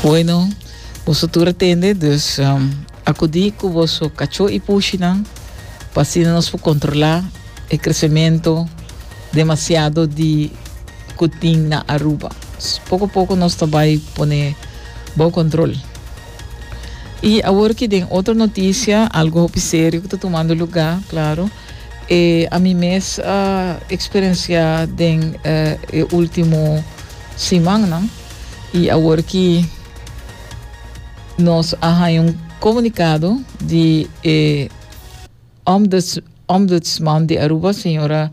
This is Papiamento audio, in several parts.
Bueno, boso tur a tende, dus um, akudí ku boso kachó i pushinan pa asina nos por kontrolá e kresementu demasiado di ku tin na Aruba. S- Poko a poko nos ta bai pone bou kontrol. I awor ki den otro notisia, algo hopi serio ku ta tumando lugá, klaro. e ami mes a eksperensiá den e último simannan i awor ki nos a haña un komunikado di e Ombuds, Ombudsman di Aruba, señora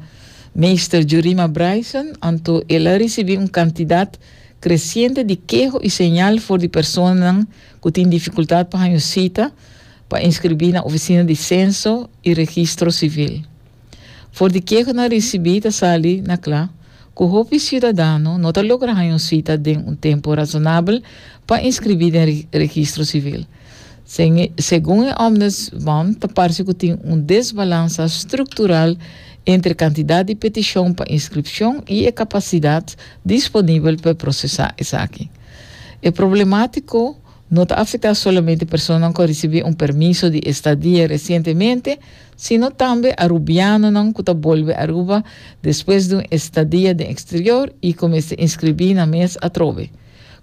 Meester Jurima Bryson, anto el a risibí un kantidat kresiente di keho i señal for di personanan ku tin difikultat pa haña un sita, pa inskribí na ofisina di Senso i Registro Sivil. For di ke ku nan risibí ta sali na kla ku hopi siudadano no ta logra haña un sita den un tempu razonabel pa inskribí den Registro Sivil. Segun e Ombudsman ta parse ku tin un desbalansa struktural entre kantidat di petishon pa inskripshon i e kapasidat disponibel pa prosesá esaki. E problemátiko. No ta afectá solamente personanan cu a ricibi un permiso di estadia recientemente, sino tambe Arubianonan cu ta bolbe Aruba despues di un estadia den exterior y cu mester inscribí nan mes atrobe.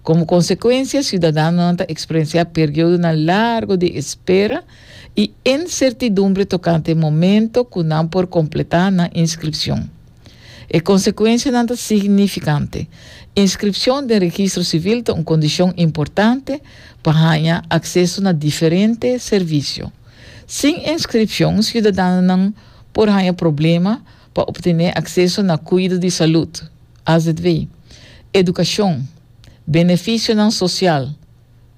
Como consecuencia, ciudadanonan ta experienciá periodonan largo di espera y incertidumbre tocante momento cu nan por completá nan inscripcion. E konsekuensianan ta signifikante. Inskripshon den registro sivil ta un kondishon importante pa haña akseso na diferente servisio. Sin inskripshon siudadanonan por haña problema pa optené akseso na kuido di salud, azv, edukashon, benefisionan sosial,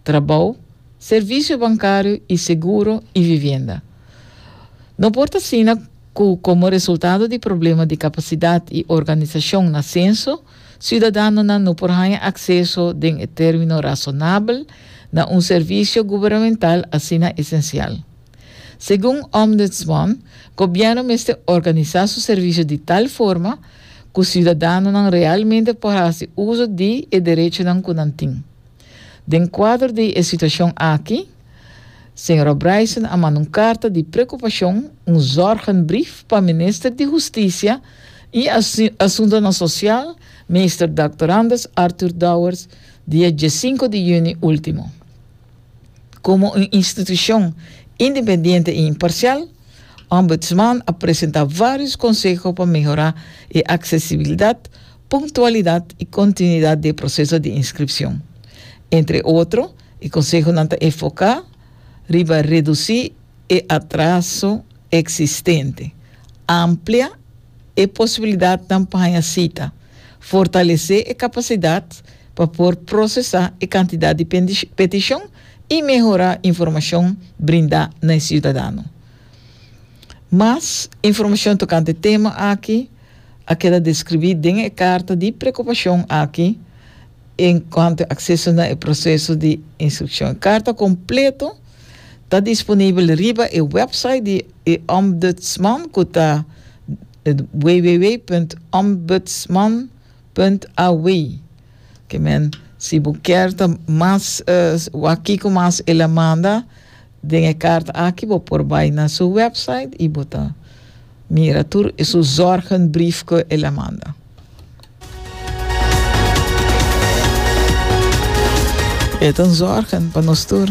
trabou, servisio bankario i seguro i vivienda. No por ta asina ku komo resultado di problema di kapasidat i organisashon na senso, siudadanonan no por haña akseso den e término rasonabel na un servisio guberamental asina esensial. Segun Ombudsman, gobièrnu mester organisá su servisio di tal forma ku siudadanonan realmente por hasi uso di e derechonan ku nan tin. Den kuadro di e situashon aki, Señora Bryson a manda un karta di prekupashon, un zorgenbrief, pa Minister di Hustisia i Asuntonan Sosial, Meester Doctor Anders Arthur Dowers, dia diesinco di yüni último. Komo un institushon independiente i imparsial, Ombudsman a presentá vários konseho pa mehorá e aksesibilidat Punctualidad y continuidad d'e proceso di inscripcion. Entre otro, e consehonan ta enfoca riba reduci e atraso existente, amplia e posibilidadnan pa haña cita, fortalece e capacidad pa por procesa e cantidad di peticion y mehora informacion brinda na e ciudadano. Mas informacion tocante tema aki. a keda describí den e carta di preocupacion aki en cuanto e acceso na e proceso di instruccion. E carta completo ta disponibel riba e website di e Ombudsman cu ta www.ombudsman.aw. Ke men si bo kier ta mas wak kico mas el a manda. Den e karta aki bo por bai na su website i bo ta mira tur e su zorgenbrief ku el a manda. E ta zorgen pa nos tur.